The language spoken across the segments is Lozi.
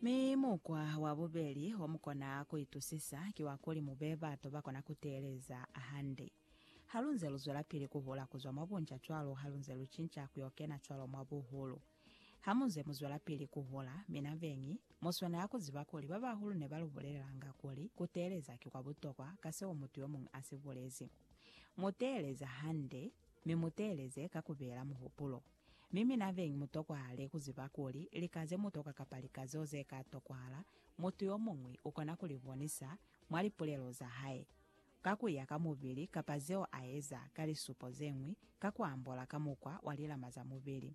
Mi mukwa wa bubeli o mu kona ku itusisa ki wa kuli mu be batu ba kona ku teeleza hande. Ha lu nze lu zwelapili ku hula ku zwa mwa bunca cwalo ha lu nze lu cinca ku yo kena cwalo mwa buhulu. Ha mu nze mu zwelapili ku hula, mina beñi, mu swanela ku ziba kuli ba bahulu ne ba lu bulelelanga kuli ku teeleza ki kwa butokwa ka seo mutu yo muñwi a si bulezi. Mu teeleza hande, mi mu teeleze ka ku beela muhupulo. Mi mina beñi mu tokwahale ku ziba kuli lika ze mu toka kapa lika zeo ze ka tokwahala mutu yo muñwi u kona ku li bonisa mwa lipulelo za hae, ka ku ya ka mubili kapa zeo a eza ka lisupo ze ñwi ka ku ambola ka mukwa wa lilama za mubili.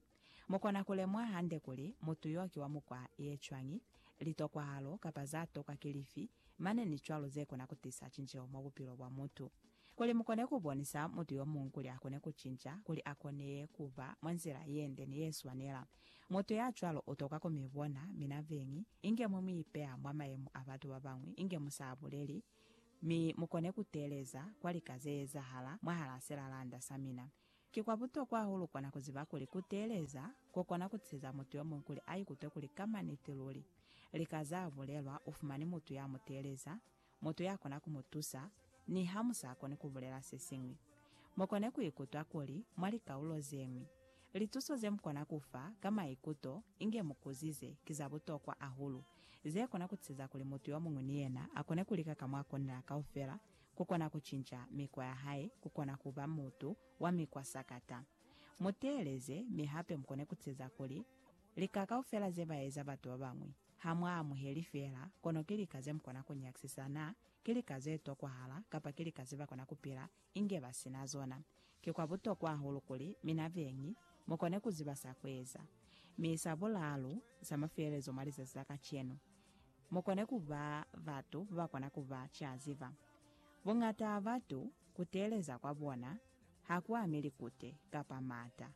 Mu kona ku lemuha hande kuli mutu yo ki wa mukwa ye cwañi, litokwahalo kapa za tokwa ki lifi, mane ni cwalo ze kona ku tisa cinceho mwa bupilo bwa mutu. Kuli mukone kubonisa mutu yomuñwi kuli akone kucinca, kuli akone kuba mwa nzila yende ni yeswanela, mutu yacwalo utokwa kumibona mina beñi inge mwe muipeya mwa mayemo a batu babañwi inge musa buleli, mi mukone kuteeleza kwa lika zeezahala mwahalaa silalanda samina. Ki kwa butokwa hahulu kona kuziba kuli kuteeleza kukona kutiseza mutu yomuñwi kuli aikutwe kuli ka maniti luli lika zaabulelwa ufumani mutu yamuteeleza, mutu ya kona ku mu tusa niha mu sa koni ku bulela se siñwi. Mu kone ku ikutwa kuli mwa likaulo ze ñwi, lituso ze mu kona ku fa ka maikuto inge mu kuzize ki za butokwa hahulu, ze kona ku tiseza kuli mutu yo muñwi ni yena a kone ku lika ka mwa konela kaufela ku kona ku cinca mikwa ya hae ku kona ku ba mutu wa mikwa sakata. Mu teeleze, mi hape mu kone ku tiseza kuli lika kaufela ze ba eza batu ba bañwi. Ha mwa amuheli feela, kono ki lika ze mu kona ku nyakisisa naa ki lika ze tokwahala kapa ki lika ze ba kona ku pila inge ba si na zona. Ki kwa butokwa hahulu kuli mina beñi mu kone ku ziba sa ku eza. Mi sa bulaalu, sa mafelelezo mwa lizazi la kacenu, mu kone ku ba batu ba ba kona ku ba ca ziba. Buñata ha batu, ku teeleza kwa bona ha ku ami likute kapa maata.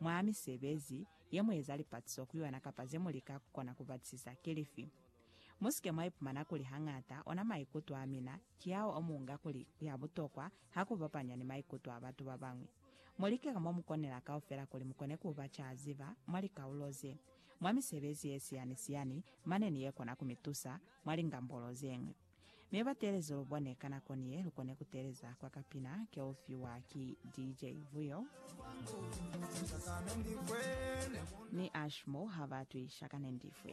Mwa misebezi ye mu eza lipatiso ku yona kapa ze mu lika ku kona ku batisisa ki lifi? Mu si ke mwa ipumana kuli hañata ona maikuto a mina ki ao o mu unga kuli ku ya butokwa ha ku bapanywa ni maikuto a batu ba bañwi. Mu like ka mo mu konela kaufela kuli mu kone ku ba ca ziba mwa likaulo ze, mwa misebezi ye siyani-siyani mane ni ye kona ku mi tusa mwa lingambolo ze ñwi. Mi ba teelezi lu bone ka nako ni ye lu kone ku teeleza kwa ka pina ke u fiwa ki DJ Vuyo ni Ashmore ha ba twisha ka Nendifwe.